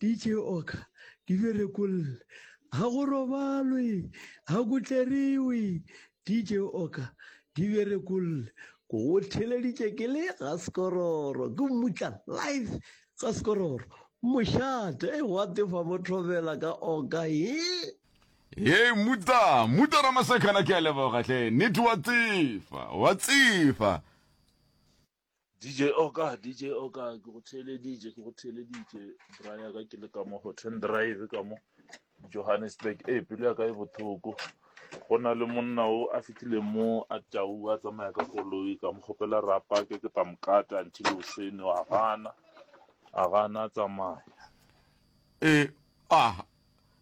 DJ Oka, di be rekolle. Ga go robalwe, ga go tleriwe. DJ Oka, di be rekolle. Go theleditše ke le ga sekororo, ke mmutla live ga sekororo. Mošate, e gwa tefa mo thobela ka Oka, ye. Hei mmuta, mmuta Ramasekhana ke a leboga hle, nnete wa tsefa, wa tsefa. DJ Oka, DJ Oka, ke go theeleditše, ke go theeleditše, bra ya ka ke le ka mo Hotten Drive ka mo Johannesburg. E, pelo ya ka e bothoko. Go na le monna o a fitlhile mo a tau a tsamaya ka koloi ka mo kgopela ra pake ke tla mokata until osene a gana a gana a tsamaya. E, ah,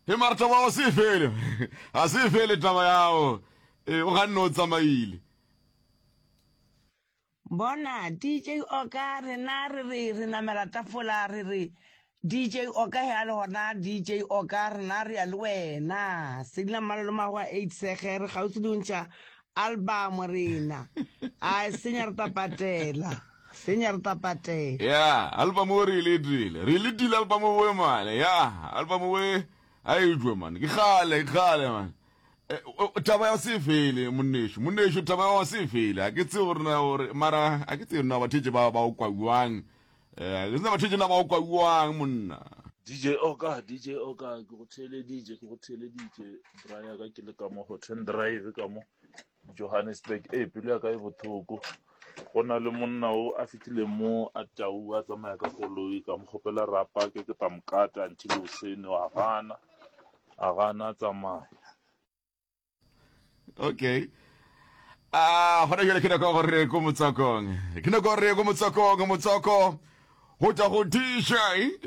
he mara taba wa se fele. Ha se fele taba yao. E, o ganne o tsamaile. Bona, DJ Oka, rena re re, re namela tafola, re re, DJ Oka, he a le gona, DJ Oka, rena re ya le wena. Selina Mmalo le Magoa Eight Sege, re kgauswi le go ntšha album rena. A senya re ta patela, senya re ta patela. Ya, album wo re e letile, re e letile album wo man, ya, album wo a e jwe man, ke kgale, ke kgale man. Eh, taba ya se fele monneso monneso taba ya se fele a ke tse gore na gore mara a ke tse na batho tse ba ba o kwauang eh ke tsena batho tse na ba o kwauang monna DJ Oka DJ Oka ke go thele DJ ke go thele DJ Brian ka ke le ka mo Hotel Drive ka mo Johannesburg e pele ya ka e bothoko go na le monna o a fitile mo a tau a tsamaya ka koloi ka mo gopela rapa ke ke tamkata until o sene wa gana A ga a na tsamaya. Okay. A gona jale ke nako go re ko motsokong. Ke nako re ko motsokong, motsoko go tla go DJ,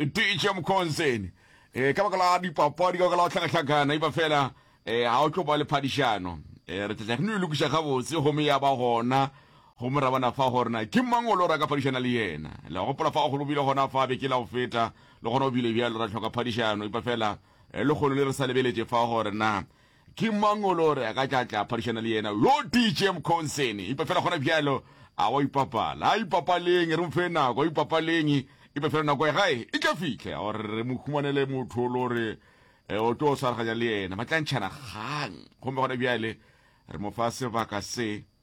DJ Mkhonzeni. Eh ka baka la dipapadi ka baka la tlhagatlhagana iba fela eh ha o tlo ba le phadišano. Eh re tla re no lokisa gabotse gomme ya ba gona Gomme ra bona fa gore na ke mang o lo ra ka phadišana le yena. Le a gopola fa go bile gona fa beke la go feta, le gona go bile bjalo, ra hloka phadišano, epa fela lehono le re sa lebeletše fa gore na ke mang o lo re a ka tla tla phadišana le yena, yo DJ Mkhonseni. Epa fela gona bjalo, a wa ipapala. A ipapaleng, re mo fe nako, a ipapaleng, epa fela nako ya gae e tla fihla ya gore re mo humanele motho o lo re o tlo swaraganya le yena, ba tla ntšhana kgang. Gomme gona bjale re mo fa sebaka se.